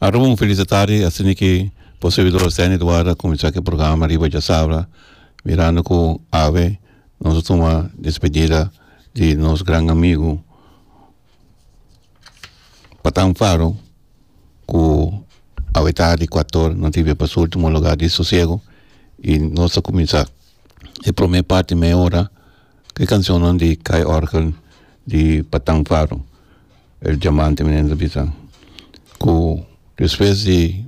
Arum un feliz atardi asina ki bo servidor Stanley Eduardo a kuminsá ki programa riba Djasabra mirando ku awe nos a tuma despedida di nos gran amigu Patan Faro ku awe tardi kuat or no tabia pa su ultimo lugar di sosiego i nos a kuminsá e prome parti mei ora ku e kanshonnan di Kai Organ di Patan Faro. El diamante mi nene ta bisa ku despues di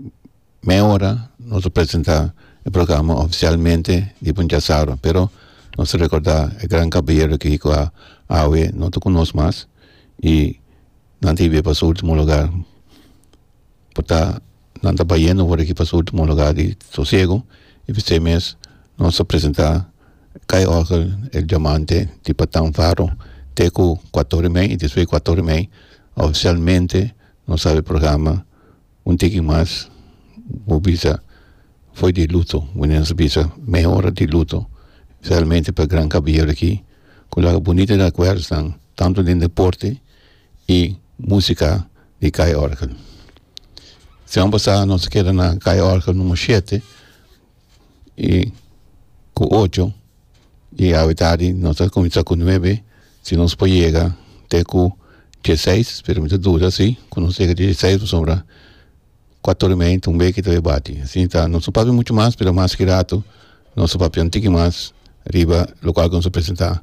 mei ora nos ta presenta e programa ofisialmente di puncha saro pero nos ta rekorda e gran kabalero aki ku awe no ta ku nos mas i nan ta hibia pa su ultimo lugar por ta. nan ta bayendo for di aki pa su ultimo lugar di sosiego y p'esei mes nos a presenta Kai Orgel El Diamante di Patan Faro te ku kuator di mei y despues di kuator di mei oficialmente nos abi programa un tiki mas bo bisa foi di luto wende nos a bisa meho ora di luto specialmente pa Gran Kabaierdo aki ku laga bunita recuerdonan tanto den deporte. y musica di kaya orgel semana pasada nos a keda na kaya orgel numero shete y cu ocho y awatardi nos ta cuminsa cu nuebe si nos por yega te cu dieseis pero mi ta duda si cu nos yega te cu dieseis pasobra cuatro hora y media ta un beker ta we bati asi ta nos ta papia mucho mas pero mas ki rato nos ta papia un tiki mas riba locual cu nos a presenta.